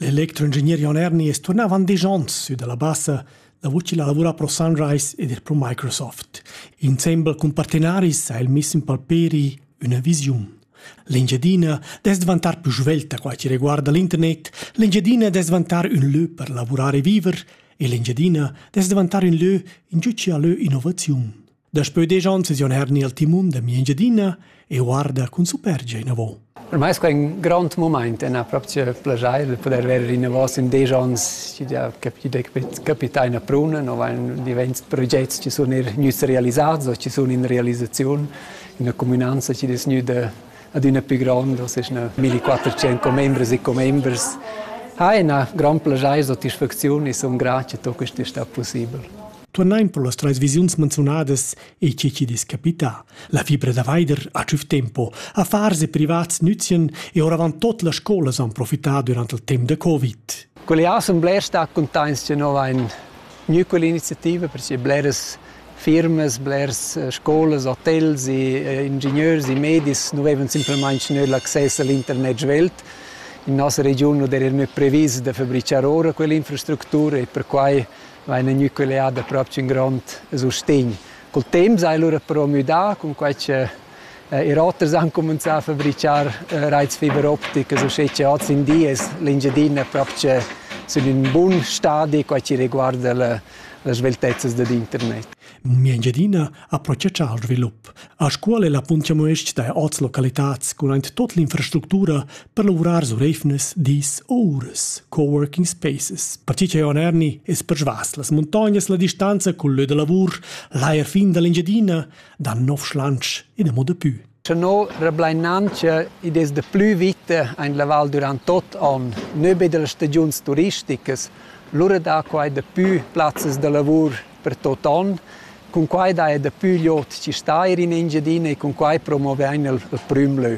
L'electroingegner Jon Erni es turná avant disch ons sü da la Bassa davo chi la lavura pro Sunrise ed eir pro Microsoft. Insembel cun partenaris ha el miss in palperi üna visiun. L'Engiadina dess dvantar plü svelta qua chi reguarda l'internet, l'Engiadina dess dvantar ün lö per lavurar e viver e l'Engiadina dess dvantar ün lö in giü chi ha lö innovaziun. Daspö desch ons es jon herni al timun da mia Engiadina e guarda cun supergia inavo. Per mai es quai ün grond mumaint e na proprio plagiai da poder verer inavo in desch ons chi ja capita in a Pruna, no vain divent progets chi sun eir gnüts realisats o chi sun in realisaziun in üna cumünanza chi'd es gnüda adüna pü grond, o seis 1400 commembres e commembers. Ha ina grand plagiai satisfacziun e sun grat che tot quest sta possibel. Turnain pro las trais visiuns menziunadas e che chi'd es capità. La fibra da vaider ha tschüf tempo. Affars e privats nüzien e oravant tot las scolas han profità durant il temp da Covid. Quelle assemblea sta contains che nova ein gnü quell'iniziativa per che bleras firmas, blers eh, scolas, hotels, e ingegneurs e medis nu vevan simplamaing nö l'access all'internet svelt. In nossa regiun non era nö previs da fabricar ora quell'infrastructura e perquai va in ün'ücleada propcha ün grond sustegn. Cul temp s'ha el lura però müdà, cun quai cha ir oters han cumanzà a fabrichar raits fiber opticas uschè cha hoz in di es l'Engiadina propcha sün ün bun stadi, quai chi reguarda las sveltezzas dad internet. Mia Engiadina ha processà al svilup. A Scuol è la punt chamues-ch da oz localitats cun aint tot l'infrastructura per lavurar sur eivnas, dis o uras, coworking spaces. Perche cha on erni es persvas las muntognas la distanza cul lö da lavur, l'ajer fin da l'Engiadina, da nov schlansch e da mo dapü. Tenor rablainantscha id es da plü vita aint la val durant tuot on, nö be da las stagiuns turisticas, lura dà quai dapü plazzas da lavur per tuot on, cun quai daja dapü glot chi stair in Engiadina e cun quai promovain il prüm lö.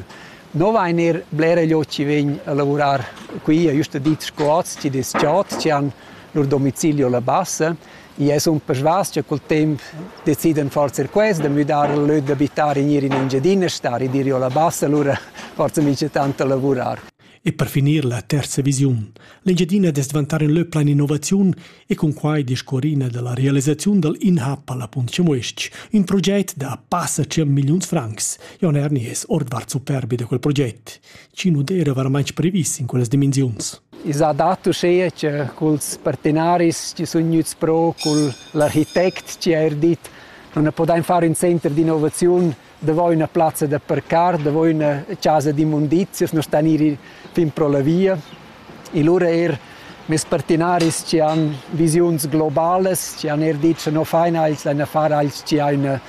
No vain eir blera glot chi vegn a lavurar qui, ha güsta dit sco hoz, chi'd es chod, chi han lur domicilio la bassa I es ün persvas cha cul temp decidan forsa quels da müdar il lö d'abitar in ir in Engiadina Stad e dir jo la bassa, lura forsa mincha tant da lavurar. E per finir la terza visiun. L'Engiadina dess dvantar in lö plan innovaziun e cun quai discorrina dalla realisaziun dal InHub alla Punt Chamues-ch, un proget da passa 100 milliuns francs. Jon Erni es ordvart superbi da quel proget. chi nu d'eira varamaing previs in quellas dimensiuns. I s'ha dat uschea cha culs partenaris chi sun gnüts pro, cul l'architect chi ha eir dit non ne podain far ün center d'innovaziun davo üna plazza da parcar, davo üna chasa d'immundizias, non sta gnir fin pro la via. e lura er mes partenaris che han visiuns globalas, che han er dit che no faina els ein a far als che ein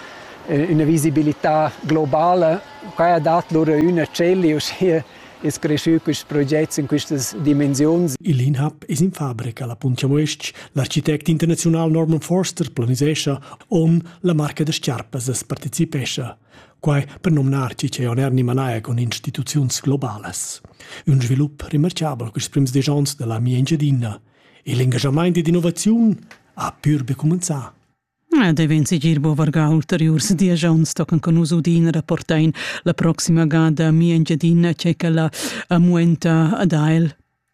una visibilità globala. Qua ha dat lura üna celli, uschia es creschü quist proget in quistas dimensiuns. Il INHAB es in fabrica, la Puntia Uestg. L'architect internaziunal Norman Forster planisescha on la marca da sciarpas as partecipescha. Quai per nomnar chi che on er ni manaia cun instituziuns globalas. Un svilup remarchabel quist prims desch ons da la mia Engiadina e l'engaschamaint ed innovaziun ha pür be cumanzà. Devin sigir bo vargà ulteriurs diesch ons tocan con nus udin rapportain la proxima gada a mia Engiadina che quella amuenta ad ael.